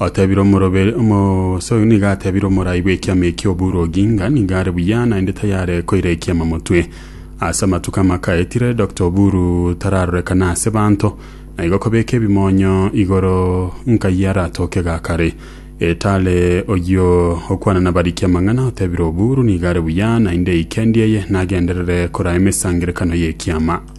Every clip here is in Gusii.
Otebire omoroberi omo sorry nigo atebire omorai bw'ekiama ekio Oburu Oginga nigo are buya naende tayare koira ekiama motwe. Ase amatuko amakaetire Doctor Oburu tararorekana ase banto na igo kobeka ebimonyo igoro nkayia aratoke gakare. Etale oyio okwana nabariki amang'ana otebire Oburu nigo are buya naende eikendi eye nagenderere kora emesangerekano y'ekiama.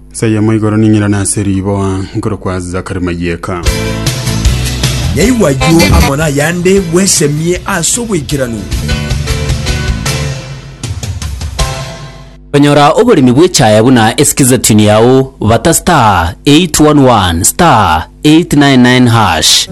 Inse eyemo igoro ning'irane ase riboa nkorokwa Zachary Mayieka. Nyaigwa ayio amo nayande bwesemie ase oboikeranu. Konyora oboremi bw'echaye buna esikizatuni yao, bata star 811 star 899 hash.